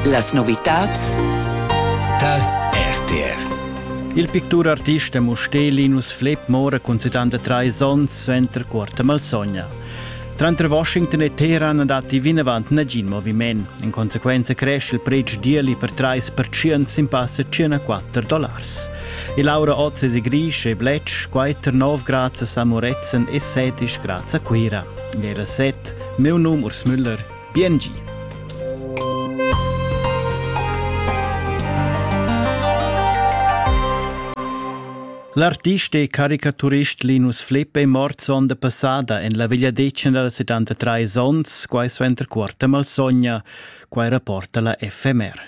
Las novitads tar RTR. Il picturartist e mustelinus Flip mora cun 73 onns suenter quarta malsogna. Tranter Washington e Teheran datti vinavant nagin moviment. In consequenza cresce il pretsch d'ieli per 3% sin passa 104 dollars. E Laura Oz è gris e bletsch, 4 9 grads a Samoretzen e 7 grads a Cuira. Era set Meu num Urs Müller, BNG. L'artist e caricaturist Linus Flipp è mort sonda passada en la vegliadetgna dals 73 onns, quai suenter quarta malsogna, quai rapporta la FMR.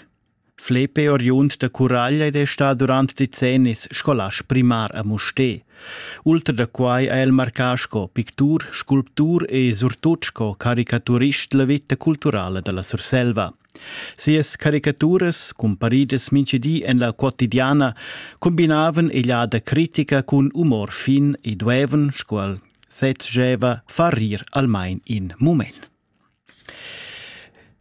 Flepe oriund da Curaglia ed è stà durant decennis scolast primar a Mustér. Ultra da quai ha el marcà sco pictur, sculptur e surtut sco caricaturist la vita culturala da la Surselva. Sias caricaturas, cumparidas mintgidi en la quotidiana, combinavan egliada critica cun umor fin e duevan, sco el sezgeva, far rir almain in mument.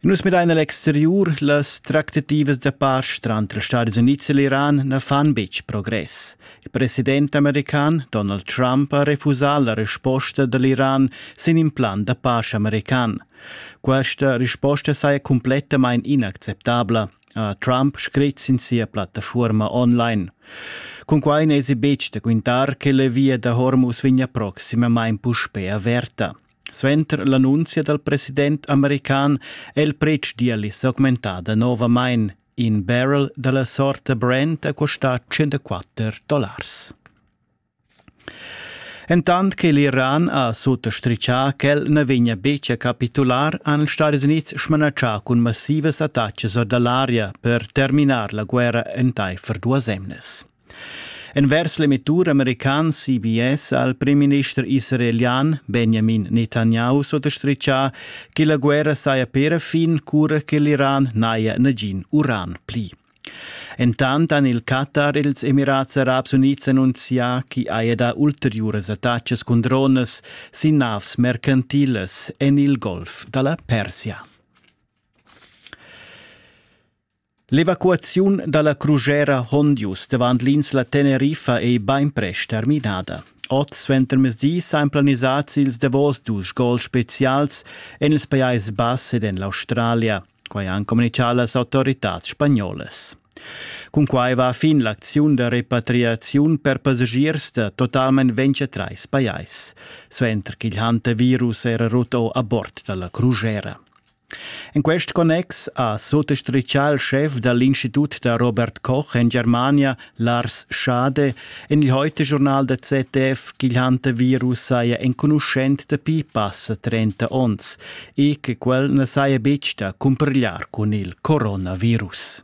Nus midain a l'exteriur, las tractativas da pasch tranter Stadis Unids e l'Iran na fan betg progress. Il president american Donald Trump ha refusà la resposta da l'Iran sin in plan da pasch american. Questa risposta saja cumplettamain inacceptabla, ha Trump scrit sin sia plattafuorma online. Cunquai n'èsi betg da quintar che la via da Hormuz vegnia proximamain puspè averta. Suenter l'annunzia dal president american è il pretsch d'ieli s'augmentà danovamain. In barrel da la sorta Brent ha costà 104 dollars. Entant che l'Iran ha suttastritgà ch'el na vegnia betg a capitular, han ils Stati Unids smanatschà cun massivas attacas or da l'aria per terminar la guerra entaifer duas emnas. Envers l'emettur american CBS ha il primminister israelian Benjamin Netanyahu sottastritgà che la guerra saja per fin cura che l'Iran n'haja nagin uran pli. Entant han il Qatar e ils Emirats Arabs Unids annunzià ch'i haja dà ulteriuras attacas cun dronas sin navs mercantilas en il Golf da la Persia. L'evacuaziun dalla crugera Hondius davant l'insla Teneriffa ei beinprest terminada. Oz suentermezdi san planisats ils davos dus gols specials en ils Pajais Bass ed en l'Australia, quai han communichà las autoritads spagnolas. Cun quai va fin l'acziun da repatriaziun per passagiers da totalmain 23 pajais, suenter ch'il hantavirus era rut a bord dalla crugera. En quest connex ha suttastritgà il schef da l'Institut da Robert Koch en Germania, Lars Schade, en il Heute-Journal der ZDF ch'il hantavirus saja enconuschent dapi passa 30 onns e che quel na saja betg da cumpigliar cun il coronavirus.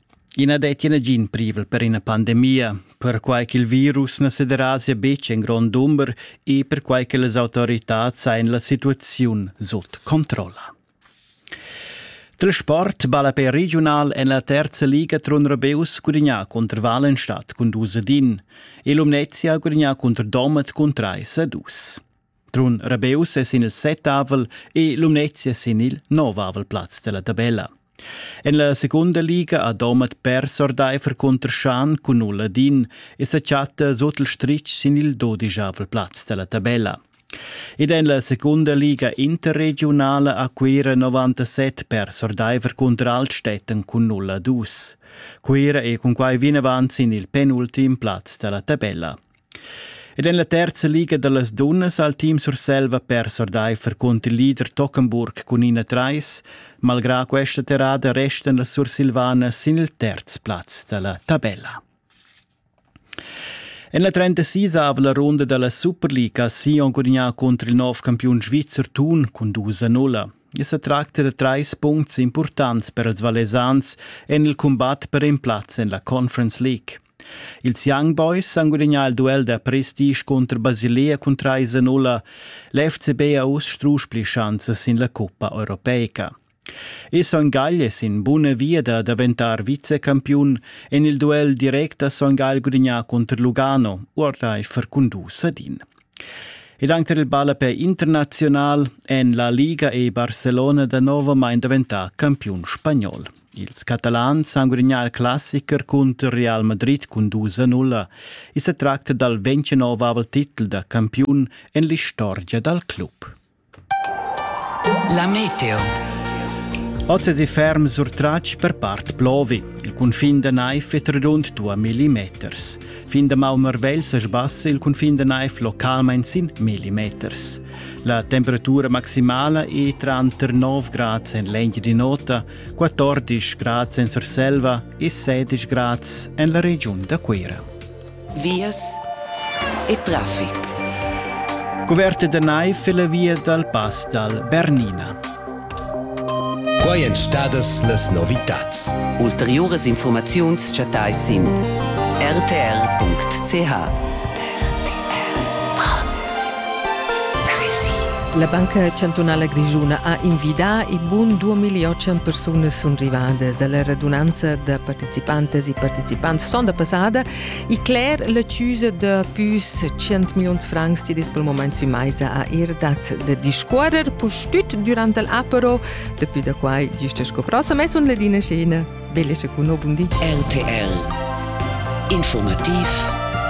I na dettia nagin privel per ina pandemia, perquai ch'il virus na sederasia betg en grond dumber e perquai che las autoritads hajan la situaziun sut controlla. Il sport ballapè regiunal en la terza liga Trun Rabeus gudagnà cunter Walenstadt cun dus ad in e Lumnezia gudagnà cunter Domat cun trais a dus. Trun Rabeus es in il settavel e Lumnezia sin il novavel plaz della tabella. En la secunda liga ha Domat pers ordaifer cunter Schan cun null Ladin e sa chatta sut il stritg sin il dodijavel plaz della tabella. Ed en la secunda liga interregiunala ha Cuira 97 pers ordaifer cunter Altstätten cun nulla dus. Cuira è cunquai vinavant sin il penultim plaz della tabella. Ed en la terza liga da las dunnas ha il team Surselva pers ordaifer cunter il leader Tockenburg cun ina trais. Malgrà questa terrada restan las Sursilvanas sin il terz plaz da la tabella. En la 36 aveva la runda da la Superliga Sion gudagnà cunter il nov campiun svizzer Thun cun 2-0. I sa tracta da trais puncts importants per ils Valesans en il cumbat per in plaz en la Conference League. Ils Young Boys han gudagnà il duel da prestige cunter Basilea cun trais a nulla. L'FCB ha uss strusch pli schanzas sin la cuppa europeica. E Son Gagl è sin buna via da daventar vicecampiun en il duel direct da Son Gagl gudagnà cunter Lugano, ordaifer cun dus ad in. Ed anche il ballapè internazional en la Liga e Barcelona da novamain daventà campiun spagnol. Ils Catalans han gudagnà il classicher cunter Real Madrid cun 2-0. I sa tracta dal 29 titel da campiun en l'istorgia dal club. La meteo. Oz è ferm sur tratg per part plovi. Il cunfin da Naif è redund 2 millimeters. Fin da Malmervel sa sbassa il cunfin da Naif localmain sin millimeters. La temperatura maximala è tranter 9 grad en l'engi di nota, 14 grad en Surselva e 16 grad en la regiun da Cuira. Vias e traffic. Cuverte da naiv e la via dal pass dal Bernina. Quai èn stadas las novitads. Ulteriuras infurmaziuns chattais sin rtr.ch. La Banca chantunala grischuna ha invidà i bun 2.800 persunas sun rivadas. La radunanza da participantas e partecipants sonda passada I cler la chiusa da pus 100 milions francs ti dis pel moment sui maisa a ir dat de discuorrer pustüt durant el apero depuis da quai giusta sco prossa mes un ledina scena belle cun no bundi RTL Informativ